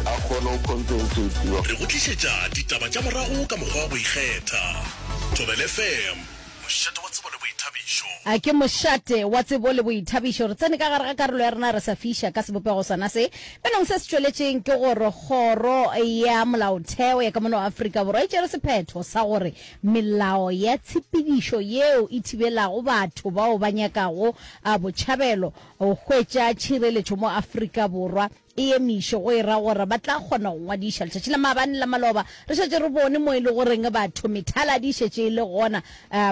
a kgone go compensatiwa. Re go tlišetša ditaba tša morago ka mokgwa wa go ikgetha. Thobela FM, mošate wa tsebo le boithabišo. A ke mošate wa tsebo le boithabišo. Re tsene ka gare ga karolo ya rena re sa fiša ka sebopego sona se bjnong se se tšweletšeng ke gore Kgoro ya Molaotheo ya ka mono Afrika Borwa e tšere sephetho sa gore melao ya tshepedišo yeo e thibelago batho bao ba nyakago botšhabelo go hwetša tšhireletšo mo Afrika Borwa e emiše, go e ra gore ba tla kgona go ngwadiša letšatši la maabane la maloba. Re šetše re bone mo e le goreng batho methala di šetše e le gona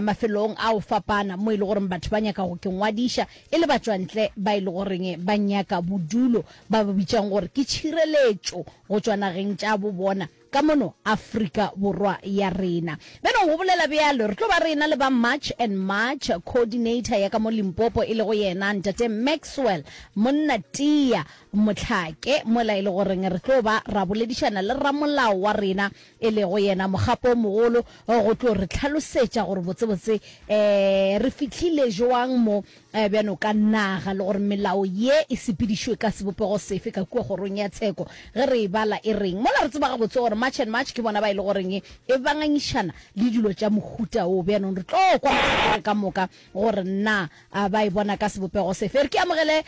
mafelong a go fapana mo e le gore batho ba nyaka go ke ngwadiša e le batšwantle ba e le goreng ba nyaka bodulo ba ba bitšang gore ke tšhireletšo go tšwa nageng tša bo bona. ka mono Afrika Borwa ya rena. Bjale o gobolela bjalo, re tlo ba rena le ba March and March, coordinator ya ka mo Limpopo e lego yena Ntate Maxwell Monna-Tia Motlhake, mola e le goreng re tlo ba ra boledišana le ramolao wa rena e lego yena Mogapo o Mogolo go tlo re hlalosetša gore botsebotse re fihlile joang mo Bjana o ka naga le gore melao ye e sepedišwe ka sebopego sefe ka kua Kgorong ya Tsheko ge re e bala e reng? Mola re tseba gabotse gore March and March ke bona ba e le goreng e banganyišana le dilo tša mohuta wo. Bjanong re tlo kwa mahlakore ka moka gore na ba e bona ka sebopego sefe. Re ke amogele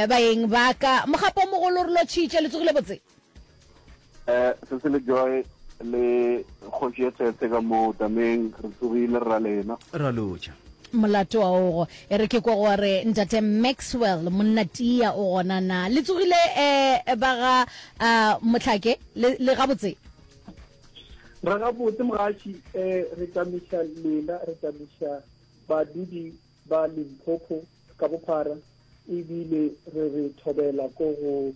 baeng ba ka. Mogapo o mogolo re lotšhitše. Le tsogile botse? eh se se le joy le kgoši e tshetse ka mo tameng re tsogile ra lena ra loja molato wa ogo e re ke kwa go re ntate maxwell monna tia o gona na le tsogile um ba ga um motlhake le gabotse re gabotse mogaši um re tamiša lela re tamiša badudi ba Limpopo ka bophara e bile re re thobela ko go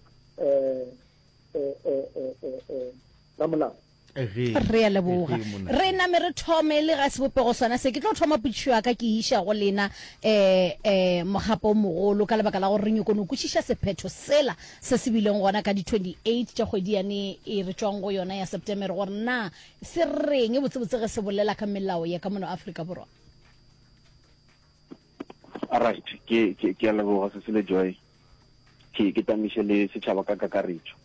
ramolao. Re a leboga. Re name re thome le ga sebopego sona se. Ke tlo thoma potšišo ya ka ke iša go lena um um mogapo o mogolo ka lebaka la gore re nyoko no kwešiša sephetho sela se se bileng gona ka di 28 tša kgwedi yane e re tšwang go yona ya Septemere gore na se reng botsebotse ge se bolela ka melao ya ka mono Afrika Borwa. Alright, ke ke ke a leboga se sele joy. Ke ke tamiše le setšhaba ka kakaretšo.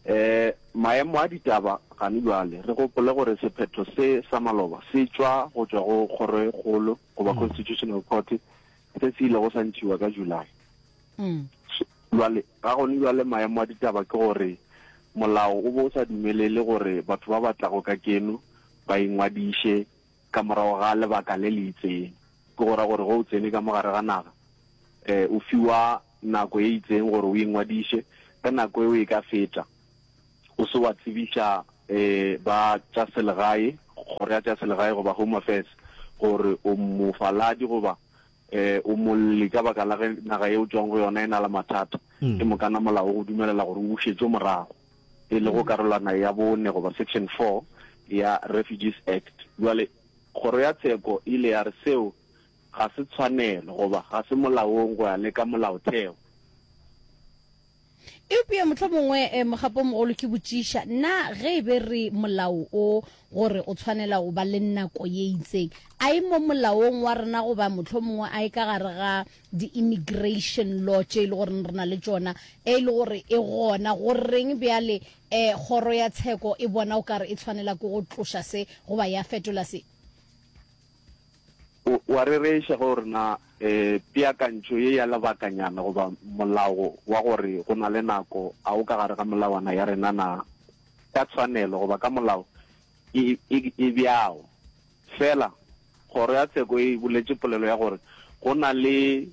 Eh maemo a ditaba gane jwale re gopole gore sephetho se sa maloba se tšwa go tšwa go kgoro e kgolo goba mm. constitutional court se se ile go sa ntshiwa ka July. Mm. Jwale ga gone jwale maemo a ditaba ke gore molao o bo o sa dumelele gore batho ba batla go ka keno ba ingwadiše ka morago ga lebaka le le itseng, ke go ra gore ge o tsene ka mo gare ga naga, e, o fiwa nako e itseng gore o ingwadiše. Ge nako eo e ka feta, o se wa tsebiša, e, ba tša selegae, kgoro ya tša selegae goba Home Affairs, gore o mofaladi goba, e, o molli ka baka la ge naga e o tšwago go yona e na le mathata, ke mokana molao o go dumelela gore o bušetšwe morago. e lego karolwana ya bone goba Section 4 ya Refugees Act. Bjale Kgoro ya Tsheko e ile ya re seo ga se tshwanelo goba ga se molaong go ya le ka Molaotheo. Eupša mohlomongwe mogapo o mogolo ke botšiša, Na ge e be re molao o go re o tshwanela go ba le nako ye itseng, a e mo molaong wa rena goba mohlomongwe a e ka gare ga di-immigration law tše e le goreng re na le tšona e le gore e gona go reng bjale um kgoro ya tsheko e bona o kare e tshwanela ke go tloša se goba ya fetola se wa rereiša ge o re na um peakantšho ye ya lebakanyana goba molao wa gore go na le nako a o ka gare ga melawana ya rena na ka tshwanelo goba ka molao e, e, e bjao Fela, Kgoro ya Tsheko e boletše polelo ya gore go na le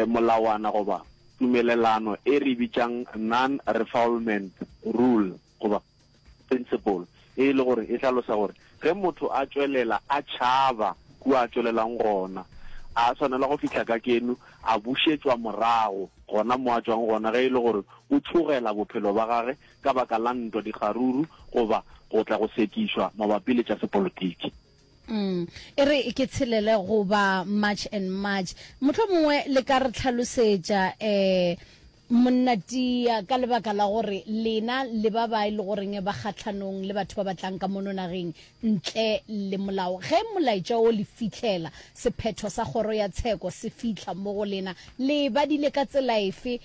molawana goba tumelelano e re e bitšang non-refoulement rule goba principle, e le gore e hlalosa gore ge motho a tšwelela a tšhaba kua a tšwelelang gona, a swanela go fihla kakeno a bušetšwa morago gona mo a tšwang gona ge e le gore o tšhogela bophelo ba gage ka baka la ntwa, dikgaruru goba go tla go sekišwa mabapi le tša sepolotiki. Umm, e re ke tshelele goba March and March. Mohlomongwe le ka re tlhalosetša, eh, Monna Tiya, ka lebaka la gore lena le ba ba e le goreng ba kgahlanong le batho ba ba tlang ka mono nageng ntle le molao, ge molaetša wo le fihlela, sephetho sa Kgoro ya Tsheko se fihla mo go lena, le e badile ka tsela efe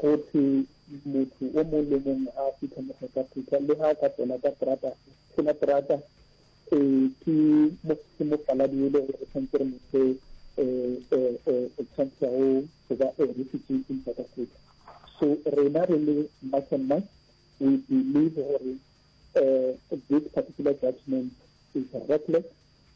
go thwe motho o mong le mong a fitlha mokgwakafutha le ga a ka tsena ka terata tshela terata um ke ke mofaladi e le gore re tshwanetse re motho um um um o tshwantsha go go ba a refugee in south africa so rena re le march and march we believe gore um this particular judgment is reckless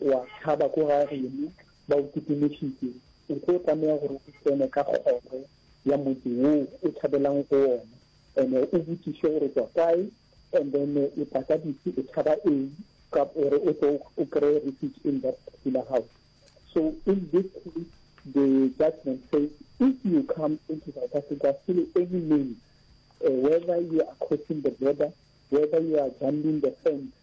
o a tšhaba ko ga geno, ba o kitimišitše, o tlo tlameha gore o tsene ka kgoro ya motse wo o tšhabelang go ona, ene o botšiše gore o tšwa kae, and then o tla ka dife, o tšhaba eng, ka gore o tlo o kry-e refuge in that particular house. So in this case, the judgment says, if you come into South Africa through any means, uh, whether you are crossing the border, whether you are jumping the fence,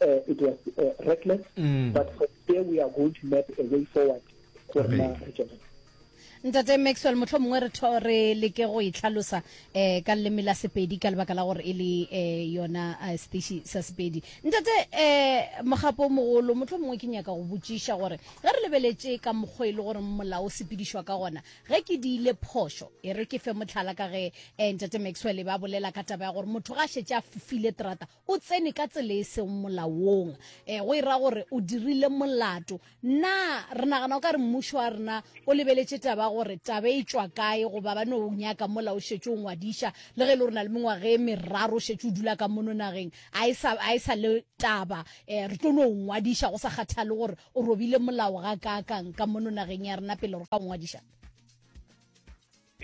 uh, it was uh, reckless mm. but from there we are going to map a way forward go rena re tšwelele ntate maxwell motlho mongwe re tho re leke go itlhalosa um ka leleme la sepedi ka lebaka la gore e le um yona eh, station sa sepedi ntate um mogapo o mogolo motlho mongwe ke nyaka go botšiša gore ge re lebeletše ka mokgwa e le gore molao o sepedišwa ka gona ge ke di ile phošo e re ke fe motlhala ka ge um ntate maxwell e ba bolela ka taba ya gore motho ga a šetse a fofile terata O tsene ka tsela e sego molaong, eh, go e ra gore o dirile molato. Na re nagana o ka re mmušo wa rena o lebeletše taba gore taba e tšwa kae goba ba no o nyaka mola o šetše o ngwadiša le ge e le gore na le mengwaga e meraro o šetše o dula ka mono nageng a e sa, a e sa le taba eh, re tlo no o ngwadiša go sa kgathale gore o robile molao ga kaakang ka mono nageng ya rena pele re ka o ngwadiša?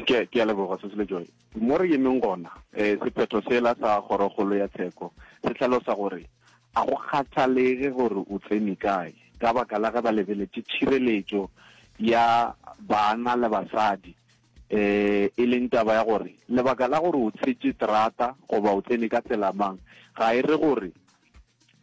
Ke, ke a leboga Sesele Joy. Mo re yemeng gona, eh, sephetho sela sa kgorokgolo ya tsheko se hlalosa gore a go kgathalege gore o tsene kae ka baka la ge ba lebeletše tšhireletšo ya bana le basadi, eh, e leng taba ya gore lebaka la gore o tshetše terata goba o tsene ka tsela mang ga e re gore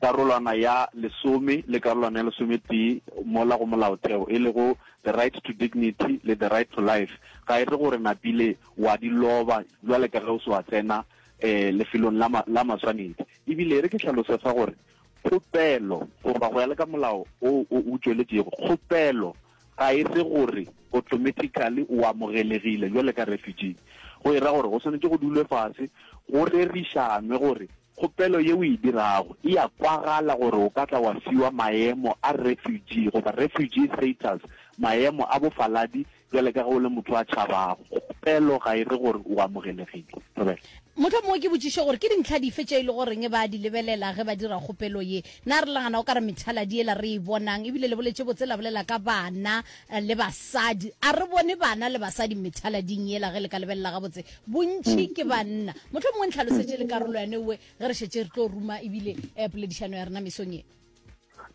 karolwana ya lesome le karolwana ya lesometee mola go molaotheo e lego the right to dignity le the right to life ga e re gore napile wa di loba jwale ka ge o se wa tsena um lefelong la maswanedi ebile e re ke tlhalose fa gore kgopelo goba go ya le ka molao o o tšweletšego kgopelo ga e se gore automatically o amogelegile jwale ka refugee go e ra gore go swanetse go dulwe fase go rerišanwe gore Kgopelo ye o e dirago e a kwagala gore o ka tla wa fiwa maemo a refugee goba refugee status, maemo a bofaladi, bjale ka ge o le motho a tšhabago. Kgopelo ga e re gore o amogelegile. Thobela. Mohlomongwe ke botšiše gore ke dintlha dife tše e le goreng ba a di lebelela ge ba dira kgopelo ye. Na re lagana o ka re methaladi yela re e bonang, ebile le boletše botse la bolela ka bana, Le basadi, a re bone bana le basadi methalading yela ge le ka lebelela gabotse, bontši ke banna. Mohlomongwe ntlhalosetše le karolo ya newe ge re šetše re tlo ruma ebile poledišano ya rena mesong ye.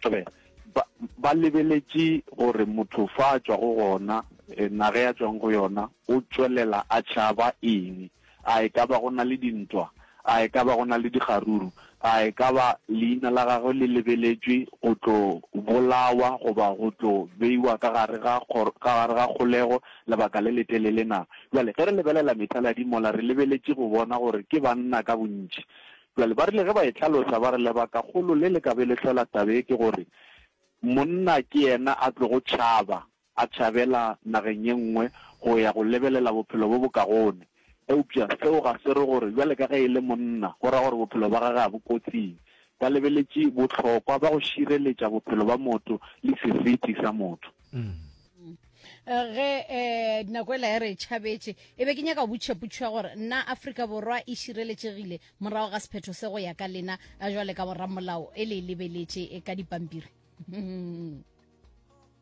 Tlabeng, ba, ba lebeletše gore motho fa a tšwa go gona, naga ya tšwang go yona, o tšwelela a tšhaba eng. A e ka ba go na le dintwa? A e ka ba go na le dikgaruru? A e ka ba leina la gagwe le lebeletšwe go tlo bolawa goba go tlo beiwa ka gare ga, ka gare ga kgolego lebaka le letelele na? Bjale, ge re lebelela methaladi mola, re lebeletše go bona gore ke banna ka bontši. Bjale, ba rile ge ba e hlalosa, ba re lebakakgolo le le ka be le hlola taba ye ke gore monna ke yena a tlogo tšhaba a tšhabela nageng ye nngwe go ya go lebelela bophelo bo bokagone. Eupša seo ga se re gore bjale ka ge e le monna go ra gore bophelo bja gagwe ga bo kotsing. Ba lebeletše bohlokwa bja go šireletša bophelo bja motho le seriti sa motho. Ge nako ela e re e tšhabetše, e be ke nyaka go botšiša potšo ya gore na Afrika Borwa e šireletšegile morago ga sephetho se go ya ka lena bjale ka boramolao e le e lebeletše ka dipampiri?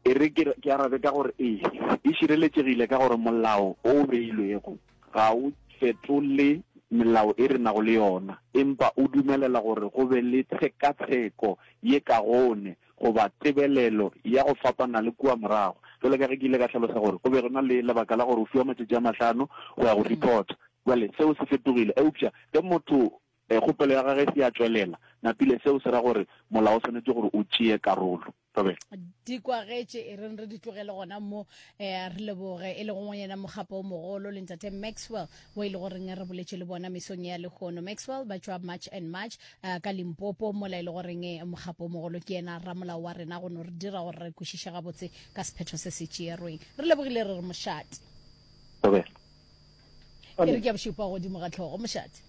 e re ke ke arabe ka gore ee e šireletšegile ka gore molao o o beilwego ga o fetole melao e re nago le yona empa o dumelela gore go be le tshekatsheko ye ka gone goba tebelelo ya go fapana le kua morago jalo ka ge ke ile ka tlhalosa gore go be go na le lebaka la gore o fiwa matšatši a mahlano go ya go reporta jale seo se fetogile eupša ge motho Ge kgopelo ya gagwe e se ya tšwelela, napile seo se ra gore Molao o swanetše gore o tšee karolo. Thobela. Di kwagetše, e reng re di tlogele gona mo. Eh, a re leboge, e lego go yena mokgapa o mogolo, le Ntate Maxwell, wo e lego reng re boletše le bona mesong ya lehono. Maxwell ba tšwa March and March, eh, ka Limpopo, mola e lego reng mokgapa o mogolo ke yena ramolao wa rena, go no re dira gore re kwešiše gabotse ka sephetho se se tšeerweng. Re lebogile, re re mošate. Thobela. Ke re ke a bošupa godimo ga tlhogo, mošate.